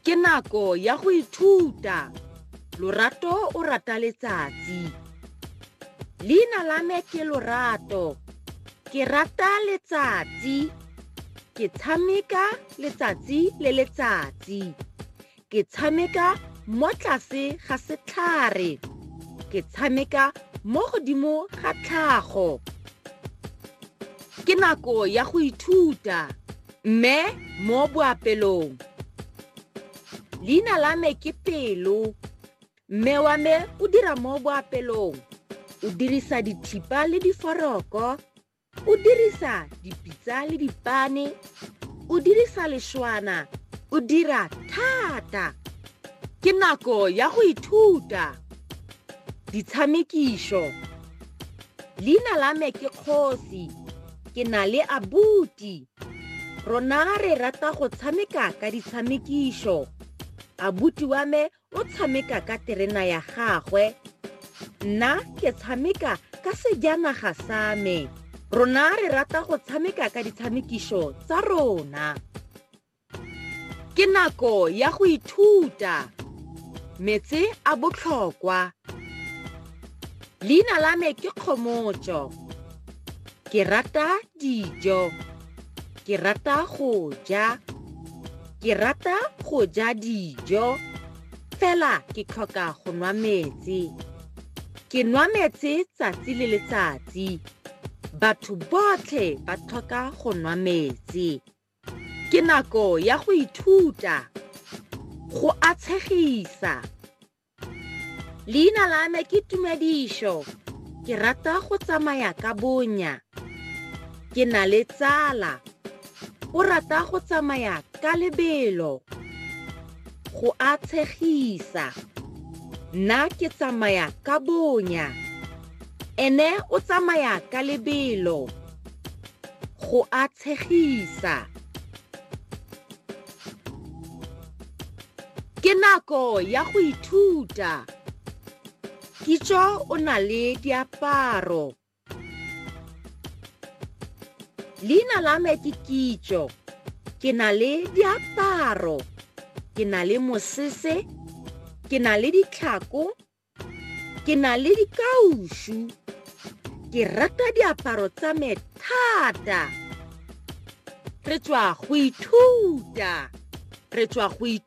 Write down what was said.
ke nako ya go ithuta lorato o rata letsatsi leina la me ke lorato ke rata letsatsi ke tshameka letsatsi le letsatsi ke tshameka mo tlase ga setlhare ke tshameka mo godimo ga tlhago ke nako ya go ithuta mme mo boapelong leina la me ke pelo mme wa me o dira mo boapelong o dirisa dithipa le diforoko o dirisa dipitsa le dipane o dirisa lešwana o dira thata ke nako ya go ithuta ditshamekišo leina la me ke kgosi ke na le abuti rona re rata go tshameka ka ditshamekišo abuti wa me o tshameka ka terena ya gagwe nna ke tshameka ka sejanaga sa me rona re rata go tshameka ka ditshamekišo tsa rona ke nako ya go ithuta metse a botlhokwa leina la me ke kgomotso ke rata Dijo, ke rata go ja ke rata go ja dijo fela ke tlhoka go nwa metsi ke nwa metsi tsatsi le letsatsi batho botlhe ba tlhoka go nwa metsi ke nako ya go ithuta go a tshegisa leina la me ke tumedišo ke rata go tsamaya ka bonya ke na le tsala o rata go tsamaya ka lebelo go a tshegisa nna ke tsamaya ka bonya ene o tsamaya ka lebelo go a tshegisa ke nako ya go ithuta kitso o na le diaparo leina la me ke kitso ke na le diaparo ke na le mosese ke na le ditlhako ke na le dikaušu ke rata diaparo tsa me thata re tswa go ithuta re tswa go ithuta